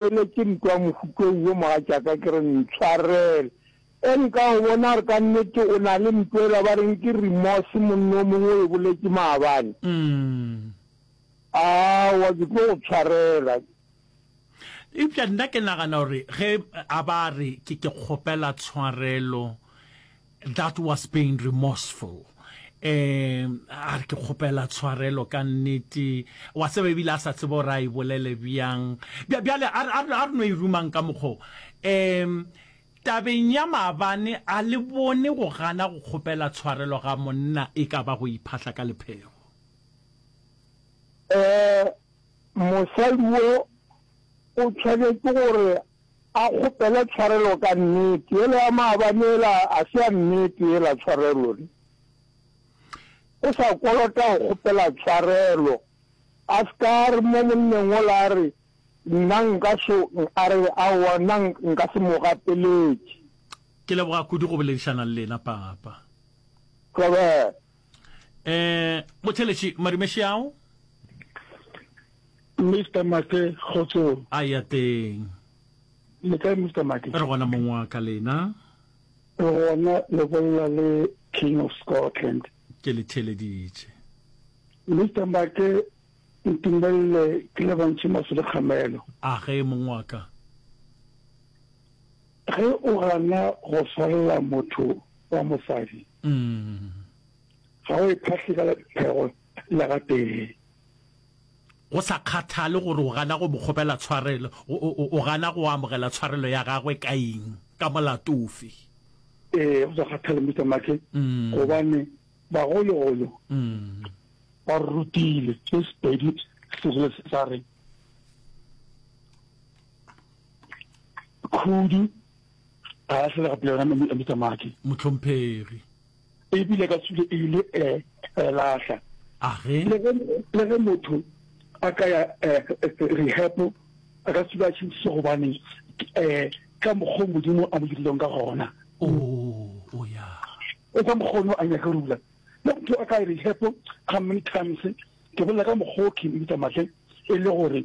Bjale ke ntwa mohuto wo mogatšaka ke re ntshwarel e nka go bona gore ka nnete o na le ntwa ela ba reng ke remorse monna o mongwe o e boletše maabane. Umm. Aowa ke tlo go tshwarela. Eupša nna ke nagana gore ge a ba re ke ke kgopela tshwarelo That was being remorseful um a re ke kgopela tshwarelo ka nnete wa tseba ebile a sa tsebe gore a e bolele bjang bjale a re no e rumang ka mokgo um tabeng ya maabane a le bone go gana go kgopela tshwarelo ga monna e ka ba go iphahla ka lephego um mosadi wo o tshwanetse gore A kgopele tshwarelo ka nnete. Yola ya maabane yela a se ya nnete yela tshwarelo ne? O sa kolota go kgopela tshwarelo. A se ka a re mo monneng wola a re, Nna nka so, a re, Aowa, nna nka se mo gapeletše. Ke leboga kudu go boledišana le lena, Papa. Robert, Eh, motheletši Marimeši ao? Mr. Make kgotsong. A ya teng. Le kae Mr. Make? Re gona mong wa ka lena. Re gona le bolla le King of Scotland. Ke le theleditše. Mr. Make ntumelele ke le bontšhe maso le kgamelo. A ge mong wa ka. Ge o gana go swarelela motho wa mosadi, ga o e phahle ka lephego la gatee. Go sa kgathale gore o gana go mo kgopela tshwarelo, o gana go amogela tshwarelo ya gagwe ka eng, ka molato ofe? Ee, go sa kgathale Mister Mackey, gobane bagologolo ba re rutile se sepedi se sa re. khudu ga ya selega pele yona mme bitsa maki motlhomphegi ebile ka sule e ile e latlha le ge motho a ka ya rehapo a ka sule a tšhentšhise gobane um ka mokgwa modimo a mo dirileng ka gona o ka mokgono a nyaka rula le motho a ka rehapo how many times ke bolela ka mokgwa o khemitsa matle e le gore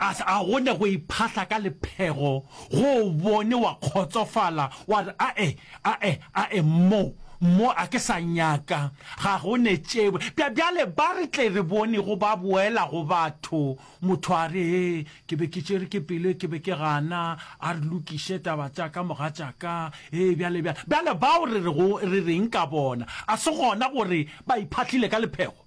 A se a gone go iphahla ka lephego go o bone wa kgotsofala wa re ae, ae, ae mmo, mmo a ke sa nyaka, ga go ne tšebo. Bja, bjale ba re tle re bonego ba boela go batho, motho a re he, ke be ke tšere ke pelo ke be ke gana, a re lokiše taba tša ka mogatšaka, he bjale, bjale, bjale bao re re go, re reng ka bona? A se gona gore ba iphahlile ka lephego?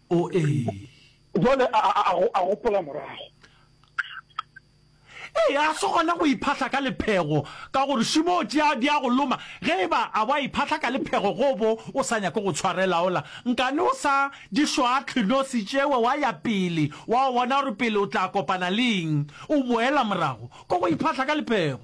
O ee. Bjale a, a, a, a gopola morago. Ee, a se gona go iphahla ka lephego, ka gore šimo o tšea di a go loma. Ge e ba a bo a iphahla ka lephego go bo o sa nyake go tshwarela ola, nkane o sa di šwahlwe nosi tšewe wa ya pele wa o bona gore pele o tla kopana le eng, o boela morago ko go iphahla ka lephego.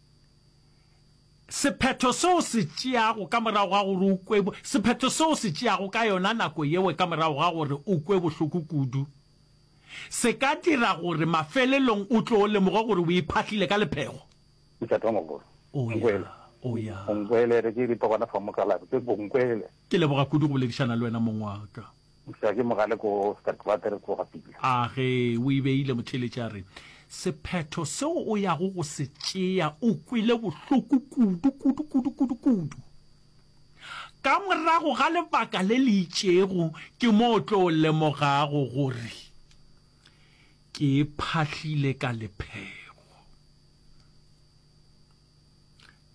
Sephetho se o se tšeago ka morago ga gore o kwe Sephetho se o se tšeago ka yona nako yeo ka morago ga gore o kwe bohloko kudu se ka dira gore mafelelong o tlo lemoge gore o iphahlile ka lephego. Mošate wa mogolo. O ya, o ya. Bonkwele, re ke e bitsa gona fa mokalabi, ke Bonkwele. Ke leboga kudu go boledišana le wena, mong wa ka. Eupša ke mogale ko Sterkwater ko ga Pila. A ge o e beile, motheeletši a re, Sephetho seo o yago go se tšea o kwele bohloko kudu, kudu, kudu, kudu, kudu. Ka morago ga lebaka le le itšego ke mo o tlo lemogago gore ke phahlile ka lephego.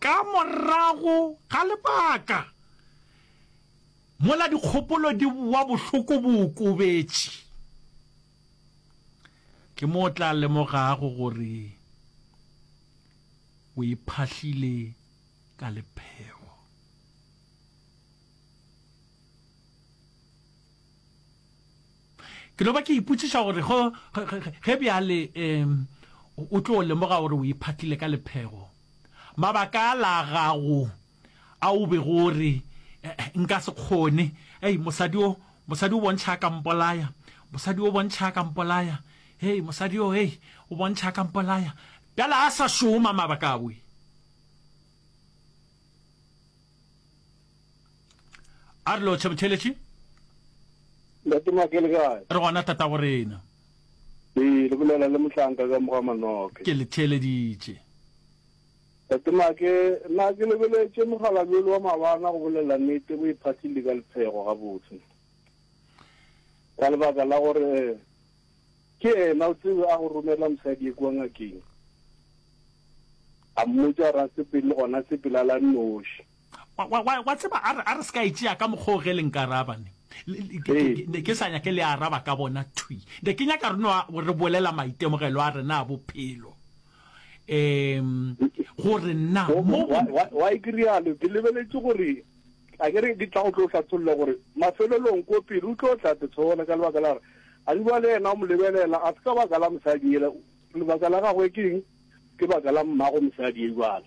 Ka morago ga lebaka, mola dikgopolo di boa bohloko bo okobetše, ke mo o tla lemogago gore o iphahlile ka lephego. Ke no ba ke ipotšiša gore go, ge, ge, ge bjale e, o tlo lemoga gore o iphatlile ka lephego. Mabaka a la gago a o bego o re, e, Nka se kgone. Hei, mosadi o, mosadi o bontšha a ka mpolaya. Mosadi o bontšha a ka mpolaya. Hei, mosadi o, hei, o bontšha a ka mpolaya. Bjale a sa šoma mabaka a we. a re lo tšhebetheletše ntate make le kae re gona tata go rena ee le bolela le motlanka ka moga manoke ke le theeleditše ntate make nna ke lebeletše mogala bjole wa mabana go bolela nete bo iphathile le ka lephego gabotse ka lebaka la gore ke ena o tsebe a go romela mosadi e kua ngakeng a mmotsa ra sepele le gona sepela la noši Wa, wa, wa, wa tseba, a re, a re se ka e tšea ka mokgwa o ge le nka araba ne. Le- le- ke- ke- ke- ne ke sa nyake le araba ka bona thwi. Ne ke nyaka re no a- re bolela maitemogelo a rena a bophelo. Um, gore na Go- mo wa- wa- wa e ke rialo ke lebeletše gore a ke re ke tla go tlo hlatholla gore mafelelong ko pele o tlo tla tetshola ka lebaka la gore a di ba le yena o mo lebelela a se ka baka la mosadi ele lebaka la gagwe ke eng ke baka la mmago mosadi e jwale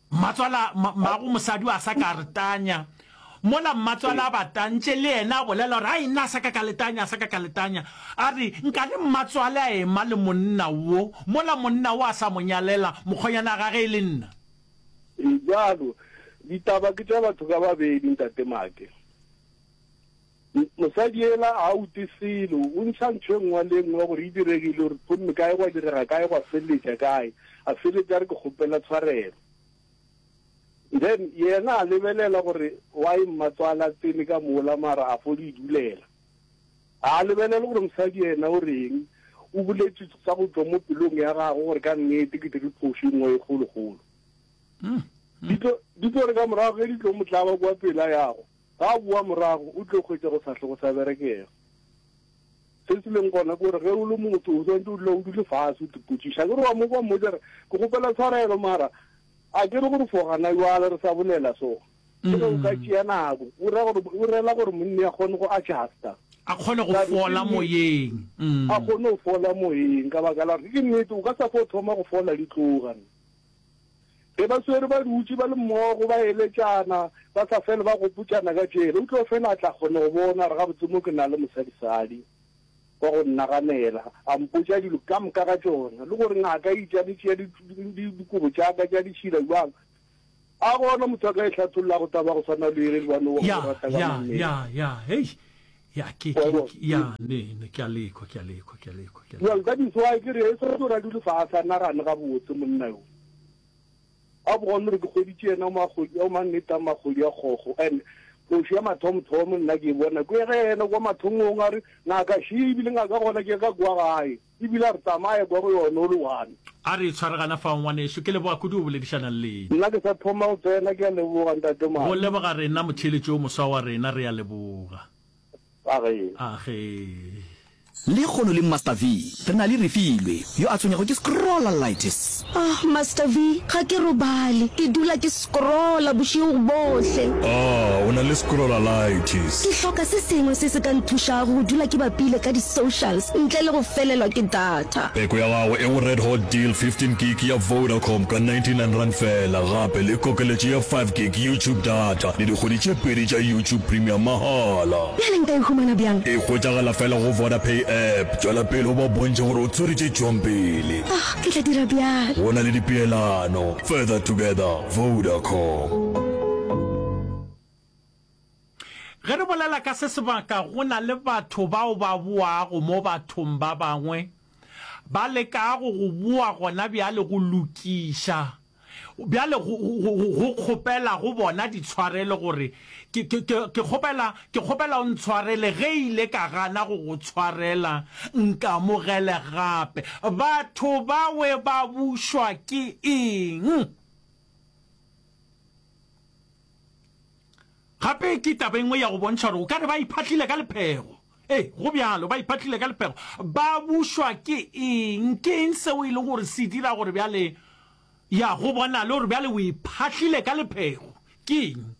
Mmatswala, Mmago mosadi o a sa ka re tanya. Mola mmatswala a ba tantše, le yena a bolela gore, Ai, nna a sa ka ka le tanya, a sa ka ka le tanya. A re, Nkane mmatswale a ema le monna wo, mola monna wo a sa mo nyalela mokgonyana wa gage e le nna. Bjalo, ditaba ke tša batho ka babedi, Ntate Make. Mosadi ela a ute selo, o ntšha ntho e nngwe le e nngwe gore e diregile, gore gomme kae gwa direga kae, gwa feleletša kae, a feleletša a re ke kgopela tshwarelo. Then yena a lebelela gore why mmatswale a tsene ka mola mara a fo le idulela. Ga a lebelele gore mosadi yena o reng, o boletše tsa go tšwa mo pelong ya gagwe gore ka nnete ke dire phošo e nngwe e kgolokgolo. Di tlo re ka morago ge di tlo mo tlaba kwa pela yago, Ga a boa morago, o tlile go hwetša go sa hle go sa berekega. Se se leng gona ke gore ge o le motho o swanetše o dula o dule fase o tepotšiša. A ke re wa mo kwa mmotša re ke kgopela tshwarelo mara a ke re gore fo gana jwale re sa bolela so. Ke re o ka tšea nako. O ra gore o rela gore monni a kgone go adjusta. A kgone go fola moyeng. A kgone go fola moyeng ka baka la gore ke nnete o ka sa fo thoma go fola di tloga. Ge ba swere ba dutše ba le mmogo ba eletšana, ba sa fele ba gopotšana ka tšela, o tlo fela a tla kgona go bona gore gabotse mo ke na le mosadisadi wa go nnaganela, a mpotša dilo ka moka ka tšona, le gore ngaka e itša le tšea dikobo tša ka tša ditšhila bjang. A gona motho a ka e hlathollago taba ya go swana le yele le ba no go Ya, rata ka ya, monnete? ya, ya, hei. Ya, ke, Wa ke, bona? ke, ya, ne, ne, ke a lekwa, ke a lekwa, ke a lekwa, ke a Well, lekwa. that is why ke re e setse o ra dule faase a nagane gabotse monna yo. A bone gore ke kgweditše yena o magodi, o mannete a magodi a kgogo and phošo ya mathomothomo nna ke e bona ko ge yena kwa mathomong a re ngaka she ebile ngaka gona ke ka kwa gae. E bile a re, Tsamaye kwa go yone o le one. A re, Tshware gana fao, ngwanešu. Ke leboga kudu go boledišana le lena. Nna ke sa thoma go tsena. Ke a leboga, Ntate Go Madi. leboga rena, motheeletši yo moswa wa rena. Re a leboga. A ge. A ge. Lehono le Master V, re na le Refilwe, yo a tshwenywago ke scrollalitis. Ahh Master V, ga ke robale, ke dula ke scrolla bošego bohle. Ahh o na le scrollalitis. Ke hloka se sengwe se se ka nthušago go dula ke bapile ka di socials ntle le go felelwa ke data. Peko ya gago e go red hot deal, 15 gig ya Vodacom ka 99 rand fela, gape le kokeletšo ya 5 gig YouTube data le dikgwedi tše pedi tša YouTube Premium mahala. Bjale nka e humana bjang? E hwetšagala fela go Vodapay app. Tšwela pele o ba bontšhe gore o tsweretse tšwang pele. Ahh Ke tla dira bjalo. Go na le dipeelano, Further Together, Vodacom. Ge re bolela ka se sebaka, go na le batho bao ba boago mo bathong ba bangwe, ba lekago go boa gona bjale go lokiša Bjale go, go, go, go kgopela go bona ditshwarelo gore ke, ke, ke, ke kgopela, ke kgopela o ntshwarele ge ile ka gana go go tshwarela, nkamogele gape. Batho bawe ba bušwa ke eng? Gape ke taba engwe ya go bontšha gore o ka re ba iphatlile ka lephego. Ee, go bjalo. Ba iphatlile ka lepego. Ba bušwa ke eng? Ke eng seo e lego gore se dira gore bjale, ya, go bonale gore bjale o iphatlile ka lepego? Ke eng?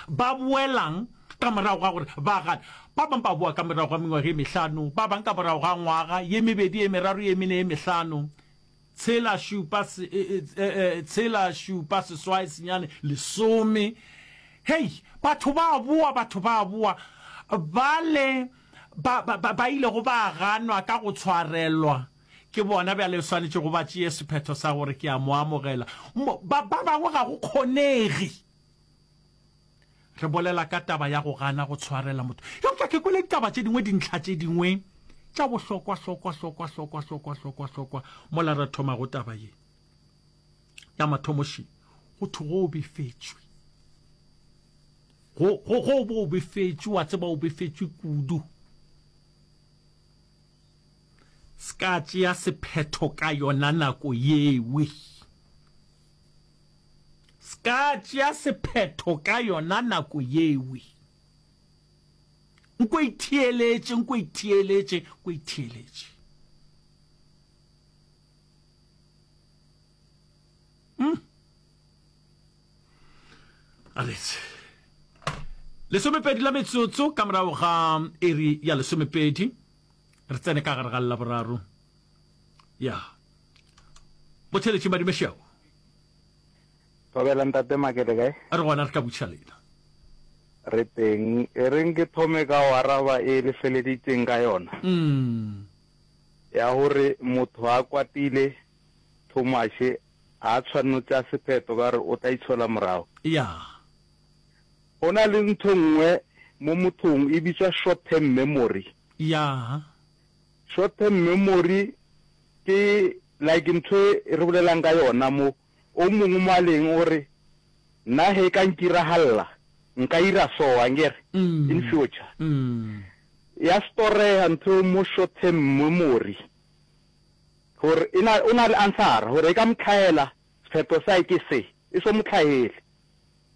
Ba boelang ka morago ga gore ba gane. Ba bangwe ba boa ka morago ga mengwaga e mehlano, ba bangwe ka morago ga ngwaga, ye mebedi, ye meraro, ye mene, ye mehlano. tshela šupa se, e, e, e, e, tshela šupa seswai senyane lesome hei batho ba boa batho ba boa bale ba, ba, ba, ba ilego ba ganwa ka go tshwarelwa ke bona bjale swanetše go ba tšeye sephetho sa gore ke a mo amogela ba bangwe ga go kgonege Re bolela ka taba ya go gana go tshwarela motho. Eupša ke kwele ditaba tše dingwe, dintlha tše dingwe tša bohlokwa, hlokwa, hlokwa, hlokwa, hlokwa, hlokwa, hlokwa, mola re thoma go taba ye. Ya mathomoši, go thwe go befetšwe. Go, go, go bo befetšwe, wa tseba o befetšwe kudu. Ska tšea sephetho ka yona nako yewe. S'ka tšea sephetho ka yona nako yewe. Nko itheeletše, nko itheeletše, nko itheeletše. Hmm. Aletse. Lesomepedi la metsotso ka morago ga iri ya lesomepedi. Re tsene ka gare ga laboraro. ya mo theletše madime šeo Thobela ntate makele kae? A re gona re ka butšha lena. Re teng. E reng ke thome ka go araba e le feleditseng ka yona. Mm. Ya gore motho a kwatile Thomashe a tshwanno tša sepheto ka gore o tla itshola morago. Ya. Go na le ntho nngwe mo mothong e bitswa short term memory. Ya. Short term memory ke like ntho e re bolelang ka yona mo. O mongwe mo a leng o re, Nna he e ka nkiragalela, nka ira so, angere, in future. Ya storega ntho eo mo short term memory. Gore e na, o na le answer-a gore e ka mo tlhahela, sephetho sa hae ke se. E so mo tlhahele.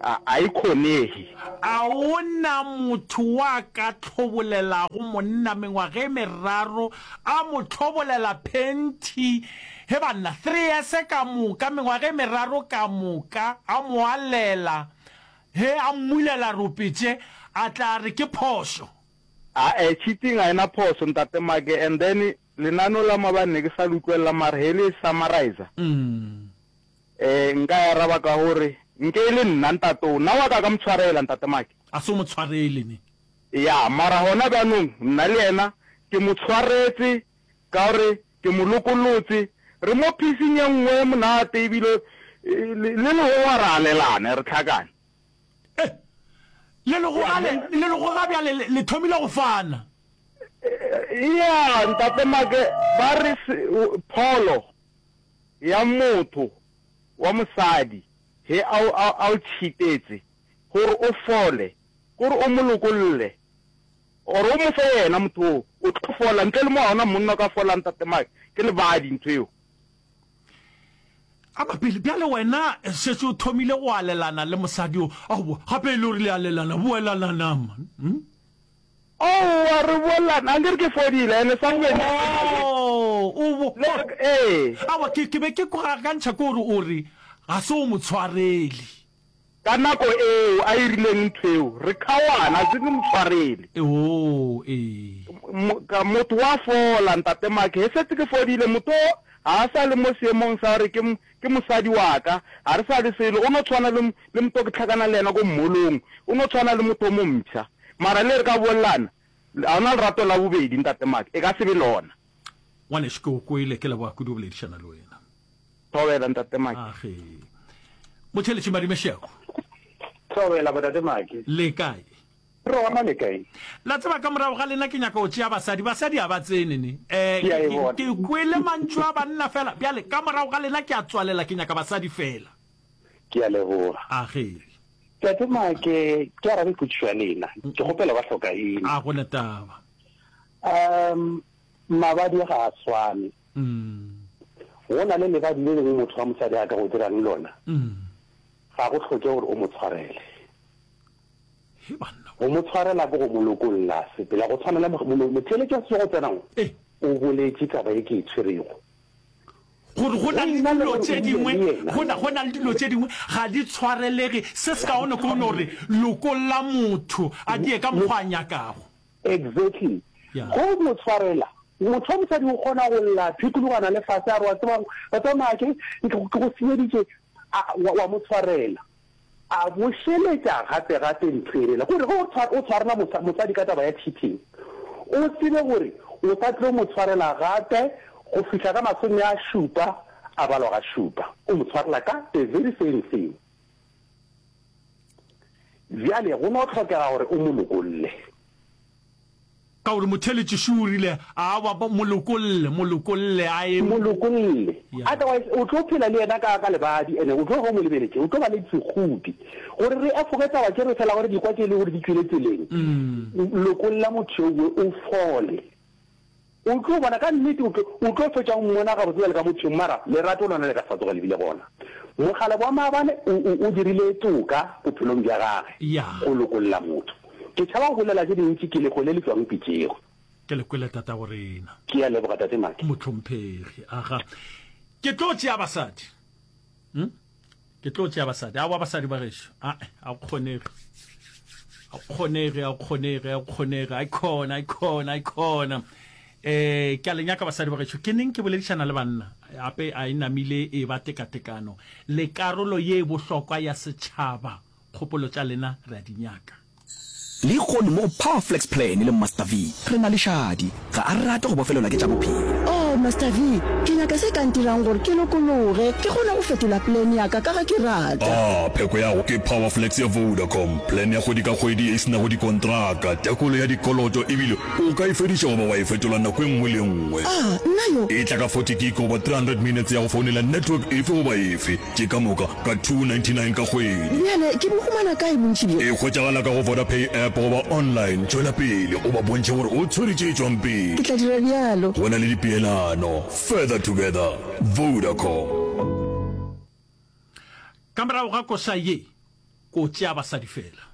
A a e kgonege? A go na motho wa ka tlhobolelago monna mengwaga e meraro, a mo tlhobolela phenti? He banna, three years ka moka, mengwaga e meraro ka moka, a mo alela, he a mmulela ropetse, a tla re ke phošo? A a cheating ga e na phoso, Ntate Make, and then lenaneo la maabane ne ke sa le utlwelela mara he le e summariser, Ee, nka e araba ka go re, Nke e le nna, ntate o. Na wa ka ka mo tshwarela, Ntate Maki? A se o mo tshwarele, ne? Ya, mara gona bjanong, nna le yena, ke mo tshwaretse, ka gore ke mo lokolotse. Re mo phising ye nngwe ye monate, ebile le, le legoga re alelane, re hlakane. Ee. Le legoga le, le legoga bjale le, le thomile go fana. Ya, Ntate Maki, ba re se, Pholo, ya motho wa mosadi ge a o, a, a o tšhitetse gore o fole, gore o mo lokolle, or o mo fe yena motho woo, o tlo fola. Ntle le mo ga ona monna o ka folang, Tate Mike. Ke lebadi ntho eo. A mapele, bjale wena šetše o thomile go alelana le mosadi o, aowa, gape e le gore le alelana, boelananang, man. Hm? Aowa re bolelana a nkere ke fodile ene sa bobedi ke fodile. Oh o bo. Le ee. Aowa ke ke be ke go akantšha ke gore o re ga se o motshwareli. Ka nako eo a e rileng ntho eo re kgaoana a se ke motshwareli. Oh ee. Ka motho wa fola ntate Mark he setse ke fodile motho o ga a sa le mo seemong sa gore ke Ke mosadi wa ka. Ga re sa le selo. O no tshwana le, le mpo ke hlakana le yena ko mmolong. O no tshwana le motho o mo mpsha. Mara le re ka bolelana, ga o na lerato la bobedi, Ntate Mark. E ka se be lona. Ngwanešu, ke go kwele. Ke leboga kudu go boledišana le wena. Thobela, Ntate Mark. Age. Motheeletši Madimešiako. Thobela, Bontate Mark. Le kae? Re gona le kae? La tseba ka morago ga lena ke nyaka go tšea basadi. Basadi ha ba tsene ne. Eh, ke kwele mantšu a banna fela. Bjale ka morago ga lena ke a tswalela, ke nyaka basadi fela. Ke a leboga. A ge. Tate Make, ke arabe potšišo ya lena. Ke kgopela ba hloka eng? A go na taba. Um, mabadi ga a swane. Go na le lebadi le lengwe motho wa mosadi a ka go dirang lona. Ga go hloke gore o mo tshwarele. Go mo tshwarela ke go mo lokolla sepela, go tshwana le motheeletši wa sesego tsenang o boletše taba ye ke e tshwerego. Gore go na le dilo tše dingwe, go na, go na le dilo tše dingwe ga di tshwarelege se se kaone ko no re lokolla motho a die ka mokgwa a nyakago. Exactly. Go mo tshwarela, motho wa mosadi o kgona go lla, phekologana le fase, a re wa tsebang, wa tseba maake, ke go senyeditše, a, wa, wa mo tshwarela. A bušeletša gape-gape ntho e rile gore ge o tshwara, o tshwarela mosa, mosadi ka taba ya cheating, o tsebe gore o sa tlo mo tshwarela gape go fihla ka masome a šupa a balwa ga šupa. O mo tshwarela ka the very same thing. Bjale go no hlokega gore o mo lokolle. Ka gore motheeletši šo o rile, A ba, ba, mo lokolle, mo lokolle, a eme. Mo lokolle. Otherwise, o tlo phela le yena ka, ka lebadi, and o tlo hwa o mo lebeletše. O tlo ba le sekgudi. Gore re efoge taba tše, re fela gore dikwa tše e lego gore di tšwele tseleng, lokolla motho yo we, o fole. O tlo bona, ka nnete o tlo, o tlo fetša o Mmona gabotse bjale ka mothong, mara lerato lona le ka se sa tsoga le bile gona. Mokgalabje wa maabane o, o, o dirile toka bophelong bja gage, Ya. go lokolla motho. Ke tšhaba go bolela tše dintši, ke lego le le tšwago pitšego. Ke le kwele, tatago rena. Ke a leboga, Tate Maki. Mohlomphegi. Aha. Ke tlo tšea basadi. Hm? Ke tlo tšea basadi. Awa basadi ba gešo. Ae, a go kgonege. A go kgonege, a go kgonege, a go kgonege. Ai khona, ai khona, ai khona. Eh, ke a le nyaka basadi ba gešo. Ke neng ke boledišana le banna. Ape a e namile e ba tekatekano. Lekarolo ye e bohlokwa ya setšhaba. Kgopolo tša lena re a di nyaka. Lehono mo go Power Flex Plan le Master V, re na le šadi. Ga a rate go bofelelwa ke tša bophelo. Oh, Master V, ke nyaka se ka ntirang gore ke lokologe, ke kgone go fetola plan ya ka, ka ge ke rata. Ah, pheko ya go ke Power Flex ya Vodacom, plan ya kgwedi ka kgwedi ye e se nago dikontraka, tekolo ya dikoloto ebile o ka e fediša goba wa e fetola nako e nngwe le e nngwe. Ah, nna yo! E tla ka forty gig goba three hundred minutes ya go founela network efe goba efe. Ke ka moka ka 299 ka kgwedi. Bjale ke bo humana kae bontši bjo? E hwetšagala ka go Vodapay app goba online. Tšwela pele o ba bontšhe gore o tshwere tše tšwang pele. Ke tla dira bjalo. Go na le dipeelano. Further together. Vodacom. Ka morago ga koša ye, ko tšea basadi fela.